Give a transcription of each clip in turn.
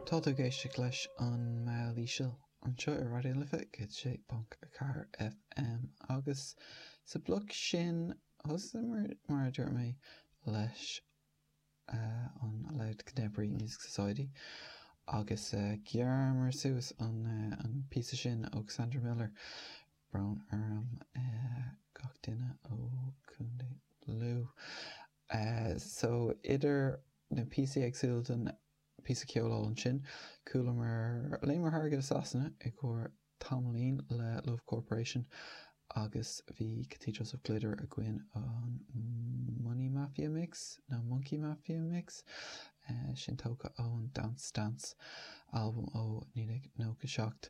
Tá tú ag éisteacht leis An Meall Íseal anseo ar Raidió na Life 106.4 FM agus sa bloc sin thosaíomar, mar a dúirt mé, leis an Louth Contemporary Music Society agus ghearramar suas an píosa sin ó Cassandra Miller, brón orm gach duine ó Chontae Lú. Eh so idir na píosaí éagsúla den píosa ceoil thall ansin, chualamar, léimeamar thar farraige go Sasana i gcomhair tamaillín le Love Corporation agus bhí Cathedrals of Glitter againn, an Money Mafia Mix nó Monkey Mafia Mix? Eh sin tógtha ón Dance Stance, albam ó 1997.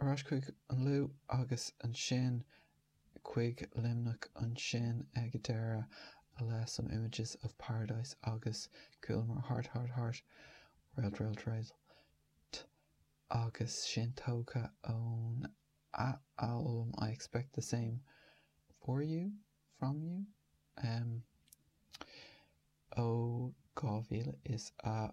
Ar ais chuig an Lú agus ansin chuig Luimneach ansin ag deireadh le Some Images of Paradise agus chualamar Heart, Heart, Heart, Relt, Relt, Relt agus sin tógtha ón a albam I Expect the Same For You, From You, em, ó 2025.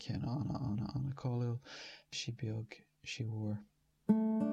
ceann ana ana ana cáiliúil, Sí Beag Sí Mhór.